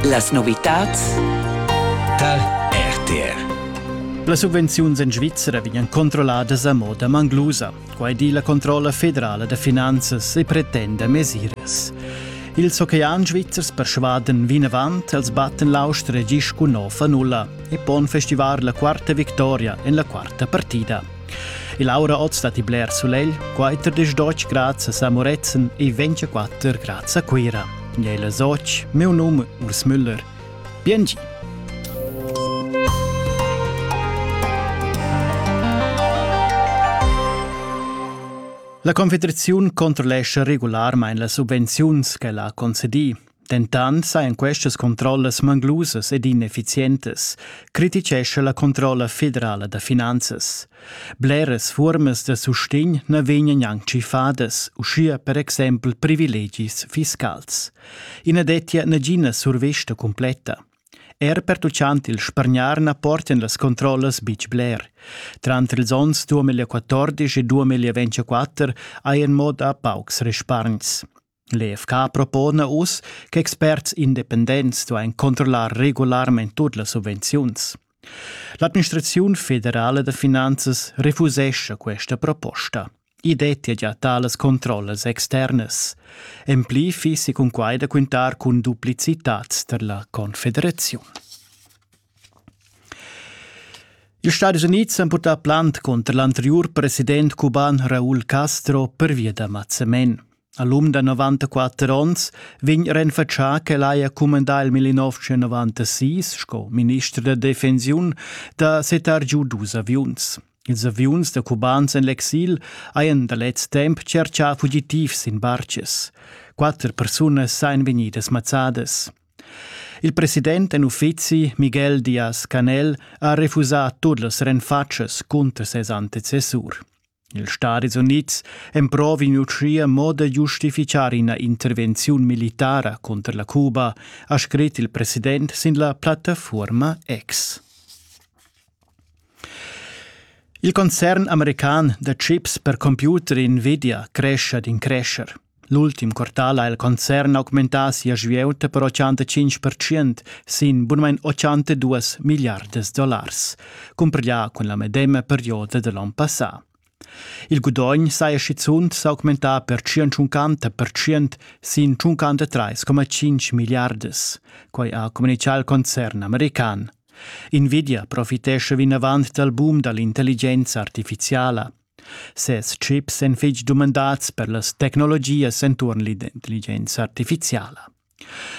Las novitads tar RTR. Las subvenziuns en Svizzera vegnan controlladas a moda manglusa. Quai di la controlla federala da finanzas e pretenda mesiras. Ils ocean svizzers persvadan vinavant als Battenlaustre gis cun nova nulla e pon festivar la quarta victoria en la quarta partida. E Laura oz dat i bler sulegl, quai tredisch doc grads a San Murezzan e 24 grads a Cuira. Gnela Soc, meu num Urs Müller. Biengi! La Confederaziun controllescha regularmain las subvenziuns ch'ella ha concedì. Dentant sajan questas controllas manglusas ed ineffizientas, criticescha la controlla federala da finanzas. Bleras fuormas da sustegn na vegnan gnanc tschiffadas, uschia per exempel privilegis fiscals. I na dettia nagina survesta cumpletta. Er pertuccant il spargnar na portan las controllas betg bler. Tranter ils onns 2014 e 2024 ha in mod a paucs respargns. L'EFK propona uss che experts independents duain controllar regularmain tut las subvenziuns. L'administraziun federala da finanzas refusescha questa proposta. I dettia gia talas controllas externas. En pli fissi cunquai da quintar cun duplicitads tar la Confederaziun. Ils Stati Unids han purtà plant conter l'anteriur president cuban Raúl Castro pervia da mazzamen. All'um da 94 onns vegn renfatschà ch'el haja cumandà il 1996 sco minister da defensiun da setar giu dus aviuns. Ils aviuns da cubans en l'exil hajan da lez temp tscherchà fugitivs sin bartgs. Quatter persunas sajan vegnidas mazzadas. Il president en uffizi, Miguel Diaz-Canel, ha refusà tut las renfatschas cunter ses antecessur. Ils Stadis Unids emprovin uschia mo da giustifichar ina intervenziun militara cunter la Cuba, ha scrit il president sin la plattafuorma X. Il concern american da chips per computer Nvidia crescha d'in crescher. L'ultim quartal ha il concern augmentà sia svieuta per 85% sin bunmain 82 milliardas dollars, cumpiglià cun la medema perioda da l'onn passà. Il gudogn saja schizunt s'augmentà per 150% sin 53,5 milliardas, quai ha communitgà il concern american. Nvidia profitescha vinavant dal boom da l'intelligenza artifiziala. Ses chips èn fitg dumandads per las tecnologias enturn l'intelligenza artifiziala.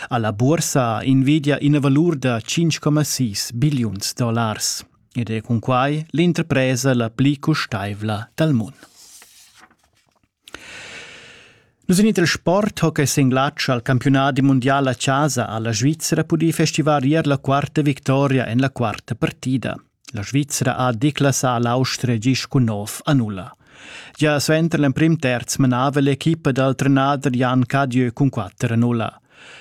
Alla bursa invidia ina valur da 5,6 billiuns dollars ed è cun quai l'interpresa la pli custaivla dal mund. Nus in il sport ho che singlatsch al campionat mundial a casa alla Svizzera pudì festivar ier la quarta victoria en la quarta partida. La Svizra ha declassà l'Austria gist cun nov a nulla. Gia suenter l'emprim terz menava l'equipa dal trenader Jan Cadieu cun quatter a nulla.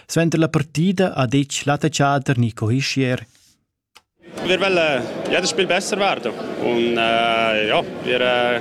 Suenter la partida ha detg l'attaccader Nico Hischier Wir wollen jedes Spiel besser werden. Und äh, ja, wir äh,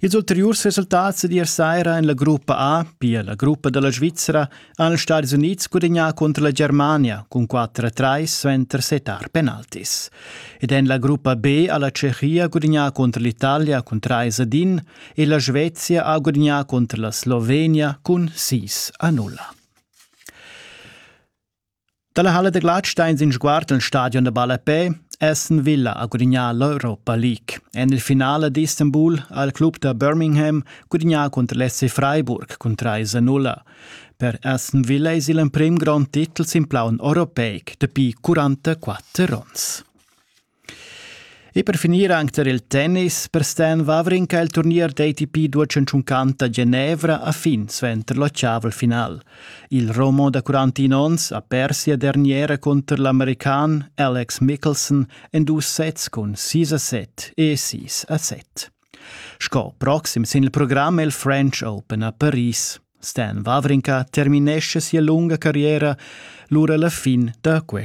Ils ulteriurs resultats d'ier saira en la gruppa A, pia la gruppa dalla Svizzera, han els Stadis Unids gudagnà cunter la Germania cun 4-3 suenter setar penaltis. Ed en la gruppa B ha la Tschechia gudagnà cunter l'Italia cun 3 ad 1 e la Svezia ha gudagnà cunter la Slovenia cun 6 a 0. Dalla halla da glatsch stein sin sguard el stadion da ballapè Aston Villa ha gudignà l'Europa League. En il finale d'Istanbul ha il club da Birmingham gudignà cunter l'SC Freiburg cun 3-0. Per Aston Villa es il emprim grond titel sin plaun europeic dapi 44 ons. E per finir anc tar il tennis per Stan Wawrinka il turnier d'ATP 250 Genevra a fin suenter l'ottaval final. Il Romo da 41 onns ha pers sia derniera cunter l'american Alex Mickelson en dus sets cun 6 a 7 e 6 a 7. Sco proxim sin il program è il French Open a Paris. Stan Wawrinka terminesce sia lunga carriera lura la fin da quest